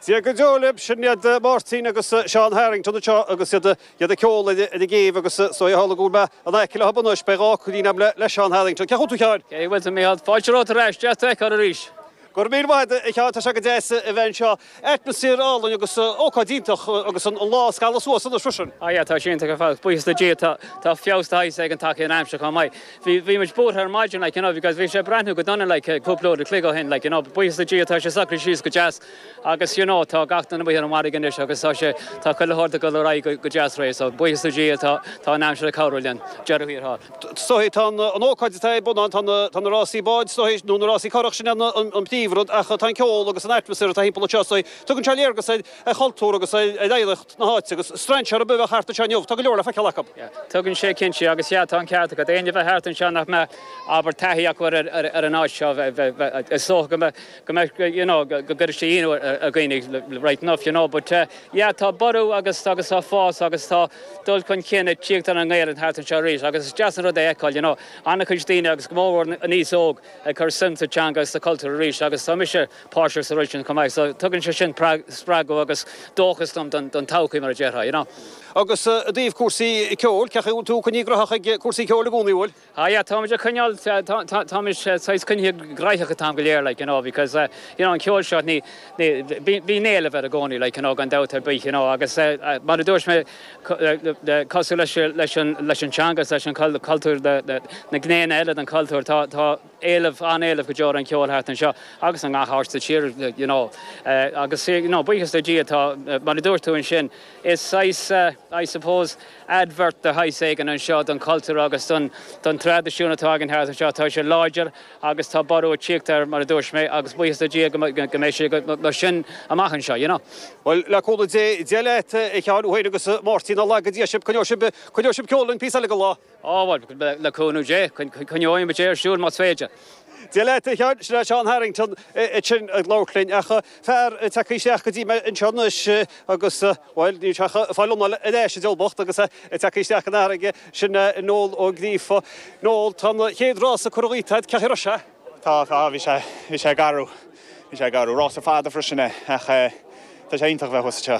Dia go deo libh, sin iad Máirtín agus Seán Harrington anseo agus iad ag ceol ag an gcéibh agus is dóigh, tharla go bhfuil mé in aice leo anois, beidh focailín agam le Seán Harrington. Cén chaoi a bhfuil tú a Sheáin? Cén chaoi a bhfuil tú a Mhíchíl? Fáilte romhat ar ais, deas do fheiceáil arís. Go raibh míle maith agat a Sheáin, tá sé go deas a bheith anseo. Atmaisféar álainn agus ócáid iontach agus an lá ag scaladh suas anois freisin. Á, yeah, tá sé iontach ar fad, buíochas le Dia, tá, tá feabhas de shaghas ag teacht ar an aimsir chomh maith. Bhí, bhí muid buartha ar maidin, like, you know, because bhí sé ag breathnú go dona, like, cúpla uair an chloig ó shin, like, you know, buíochas le Dia, tá sé socraithe síos go deas agus, you know, tá gach duine amuigh ar an bhfarraige anois agus tá sé, tá chuile shórt ag dul ar aghaidh go, go deas réidh, so, buíochas le Dia, tá, tá an aimsir ag cabhrú linn, faoi dheireadh thiar thall. Is dóichí, tá an ócáid atá ar bun ann, tá na rásaí báid, is dóichí, nó na rásaí currach, sin é an príomhrud, ach tá an ceol agus an atmaisféar atá thimpeall anseo, is dóichí, tugann sé léargas ar chultúr agus ar oidhreacht na háite, agus strainséir ar bith a bheadh thart anseo inniu, tá go leor le feiceáil acu. Tugann sé, cinnte, agus sea, tá an ceart agat, éinne a bheadh thart anseo nach mbeadh an oiread taithí acu ar an áit seo, is dócha go mbeadh. go mbeadh, you know, go gcuirfeadh sé ionadh ar dhaoine, right enough, you know, but yeah, tá borradh agus tá fás agus tá dul chun cinn ag tíocht ar an nGaelainn thart anseo arís agus is deas an rud é a fheiceáil, you know, an-chuid daoine agus go mór mhór an aos óg ag cur suim sa teanga is sa chultúr arís agus tá mise páirteach sa rud sin chomh maith so tugann sé sin spreagadh agus dóchas dom don todhchaí mar a déarfá, you know. Agus i dtaobh cúrsaí ceoil, cé acu a bhfuil tú coinnithe gnaitheach ag cúrsaí ceoil i gcónaí, a bhfuil? Ah yeah, táimid ag coinneáil, táimid saghas coinnithe gnaitheach an t-am go léir like, you know, because, you know, an ceol seo, ní, ní, bíonn éileamh air i gcónaí like, you know, gan dabht ar bith, you know, agus mar a dúirt mé, cosúil leis, leis an, leis an teanga is leis an chultúr, na, na, na gnéanna eile den chultúr, tá, tá éileamh, an-éileamh go deo ar an cheol thart anseo agus i ngach áit sa tír like, you know, agus, you know, buíochas le Dia, tá, mar a dúirt tú ansin, is saghas, I suppose, Advert de shaghas éigin anseo don chultúr agus don don traidisiún atá againn thart anseo. Tá sé láidir agus tá borradh ag tíocht air mar a dúirt mé agus buíochas le Dia go mbeidh go mbeidh sé go mar sin amach anseo, you know. Bhuel, le cúnamh Dé, Dia leat, a Sheáin tú féin agus a Mháirtín, nár laga Dia sibh, coinneoidh sibh, coinneoidh sibh an ceol linn píosa eile den lá? Á, bhuel, le cúnamh Dé, coinneoidh muid é ar siúl más féidir. Dia leat, a Sheáin, sin é Seán Harrington ansin ag labhairt linn ach fear ag teacht isteach go dtí mé anseo anois agus. Bhuel, níl sé ach ag fáil a anáil ar ais, an diabhal bocht, agus é ag teacht isteach ón bhfarraige. Sin é Noel Ó Gríofa. Noel, tá an chéad rása curtha díbh, cén chaoi a raibh sé? Tá, tá, bhí sé, bhí sé garbh, bhí sé garbh. Rása fada freisin é, ach tá sé iontach a bheith thuas anseo.